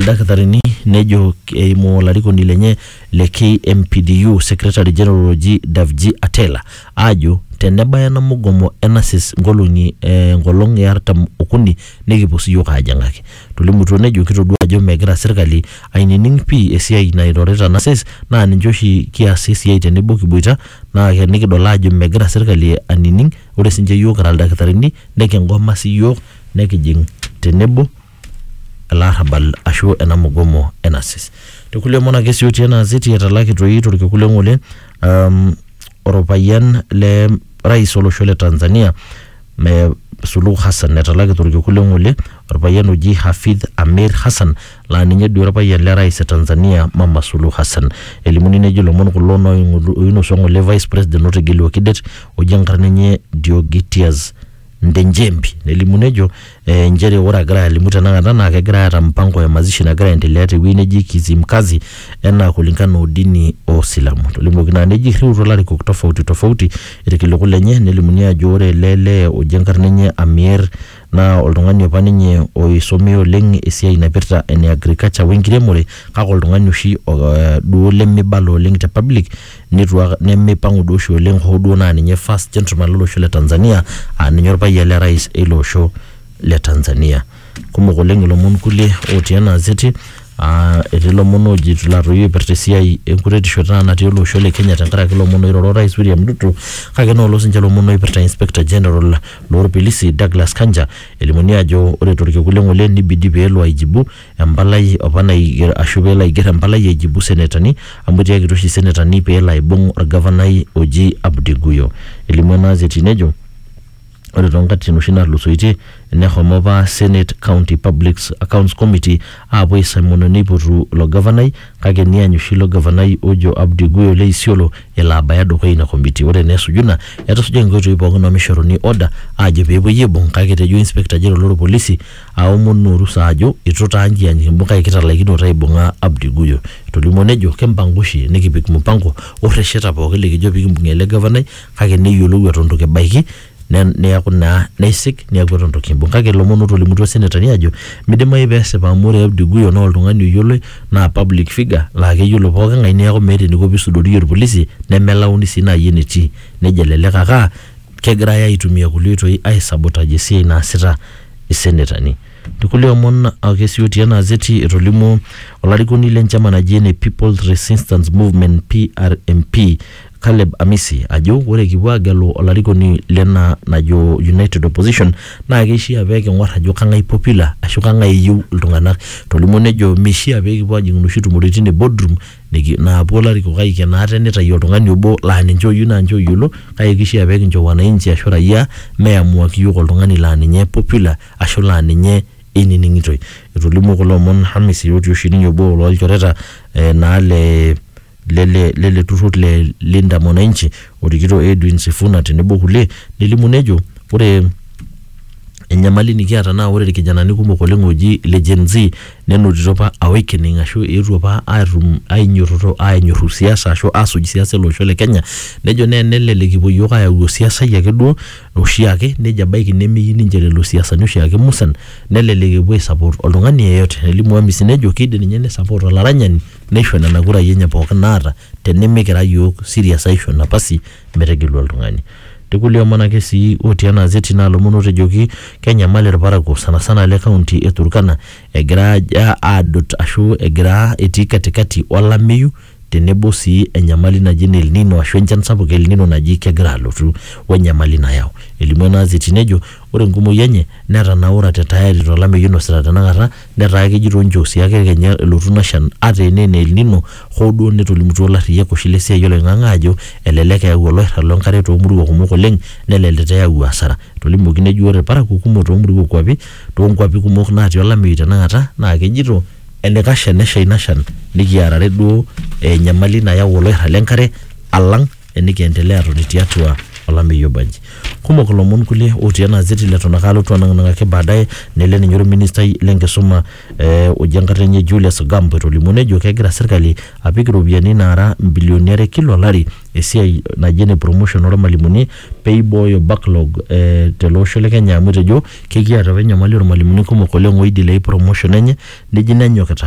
ildakitarini nejo eimu olarikoni lenye le KMPDU Secretary General oji Davji Atela aajo tenebaya ena mugomo e nurses nkolong'i eh, enkolong e artam okuni nikipuo siyiok aajing'aki. Tolimutuo nejo kitodua ajo megira sirkali ainining pii esiai nairorita nurses naa ninche oshi kias esiai tenebo kiboita naa ke- nikidol aajo megira sirkali anining ore sinche yiok kira ildakitarini nikingoma siyiok nekijing tenebo elarrabal ashu ena mugomo e NASIS. Te kulie omon ake sii otii ena gazeti etalaki toi torkekun le ng'ole um, orpayian le rais olosho le Tanzania me Suluhu Hassan etalaki torkekun le ng'ole orpayian oji Hafidh Amir Hassan laa ninye duo orpayian le rais e Tanzania Mama Suluhu Hassan. Elimuni nejo ilomon kulo nooing'olu- oinosu eng'ole vice president otegeluaki det oji enkarna enye Deogratias Ndenjembi nelimu nejo eh, nchere ore agira alimu tenakata naa kegira aata mpango ya mazishi nagira aendelea tewueji neji Kizimkazi enaa kulingana o dini o Silamu. Tolimuoki naa neji irriutuo larikok tofauti tofauti irkiliku lenye nelimuni ajo ore ele lee oji enkarna enye Amier naa oltung'ani apa ninye oisomea oleng esiai naipirta ene agriculture wenkiremore kake oltung'ani oshi o- eh, duo lemibala oleng te public Neitu ak- nemeipang'u duo oshi oleng hoo duo naa ninye first gentleman lo losho le Tanzania aa ninye olpayian le rais eilo osho le Tanzania. Kumok oleng ilomon kulie otii ena azeti aa etii ilomon ooji laa toi oipirta esiai e nkuretisho taata natii ele osho le Kenya tenkaraki ilomon oiroro o rais William Ruto kake enoolong siininche ilomon oipirta inspector general loo lpolisi Douglas Kanja elimuni aajo ore to lkekun le ng'ole neibidi pee elo aijibu empalai opa naiger ashu pelo aiger empalai aijibu senetani amu etiakitia oshi senetani pelo aibung orgavanai oji Abdi Guyo. Elimu ena gazeti nejo ore tonkatitin oshi natulusoitie nehomo apa senate county public accounts committee apuo aisamwena neipotu ilo gavanai kake niany oshi ilo gavanai ojo Abdi Guyo le Isiolo elo abaya dukuya ina committee. Ore naa esuju ina etusuja inkoitoi pookin omishoruni order ajo pepuoi aibung kake etejo inspector general lorpolisi aomonu orusa ajo itu taa njian kimbukai kitalaikinoto aibung'a Abdi Guyo. Etolimuo nejo kimpangu oshi nikipik mupango o rresheta pooki likijo pikimbung'ie ele gavanai kake neyiolou eton itu kibaiki ne neaku naa neisig neaku eton itu kimbung. Kake ilomon otolimutuo senetani ajo midimayu pesipa amu ore Abdi Guyo naa oltung'ani oyioloi naa public figure laa keyiolo pooki ng'ae neaku meeta eniko pisudoriyie olpolisi nemelauni sii nai enetii. Nejo elelek ake aa kegirai aitumia kulie oitoi ai sabotage esiai naasita. isenetani. Tekulie omon ake sii otii ena azeti etolimuo olarikoni le nchama naji ene People's Resistance Movement PRMP Caleb Amisi ajo ore kipuo aagelu olarikoni lena najo United Opposition naa keishia pee king'or ajo kang'ae popular ashu kang'ae eyieu iltung'anak. Etolimuo nejo meishia pee kipuo aajing inoshi tumoritin e boardroom Niki- naapuo larikok aiken ate neitayu oltung'ani obo laa ninche oyieu naa ninche oyiolo kake keishaa pee kincho wananchi ashu raia meamuaki iyiook oltung'ani laa ninye popular ashu laa ninye einining'itoi. Etolimuo kulo omon Hamisi otii oshi ninye obo loo lchoreta eh, naa le lele lele turrur le Linda Mwananchi orikito Edwin Sifuna tenebo kulie nelimu nejo ore enyamali nikiata naa ore irkijanani kumok oleng ooji ile Gen-z nenotito apa awakening ashu eetuo apa atum ainyototo anyorru siasa ashu asuj siasa ele osho le Kenya nejo naa enelelek kipuo iyiook ayau osiasai ake duo oshiake nejo ebaiki nemeyieu ninche lelo siasani oshiake musan nelelek epuo ae support oltung'ani yeyote nelimu Amisi nejo kiidim ninye ni support olaranyani neisho nena kurai enye pookin naata tenemikira iyiook serious aisho napasi metegelu oltung'ani. Te kulie omon ake sii otii ena azeti naa lomon ootejoki kenyamal ilparakuo sanasana le kaunti e Turkana egira aajo aadot ashu egira etii katikati olameyu tenebo sii enyamali naji ene El Nino ashu enchan sapuk e El Nino naji kegira alotu wenyamali nayau. Elimu ena azeti nejo ore enkumoi enye netanaurate tayari tolameyu oinosita tenakata Netaa kejito ninche osiake kenya elotu ina shan ata enaa ene El Nino hoo duo netolimutuo ilarriyiak oshi le siai oloing'ang'e aajo elelek eyau oloirrag lo nkare too murua kumok oleng neleleta eyau asara. Etolimuoki nejo ore ilparakuo kumok too murua o kuapi too nkuapi kumok naati olameyu tenakata naa kejito enaikash enesha ina shan nikiarare duo enyamali nayau oloirrag le nkare alang enikiendelea atoni tiatua olameyu obanji kumok ilomon kulie otii ena azeti leton ake alotu anang'anang'aki baadaye nele ninye orministai lenkisuma eh, oji enkarna enye Julius Gambo etolimuo nejo kegira sirkali apik iropiyiani naara mbilioni are kila olari esiai naji ene promotion ormalimuni peibooyo backlog eh, tele osho le Kenya amu etejo kekiata apa enyamali ormalimuni kumok oleng oidilei promotion enye neji nenyokita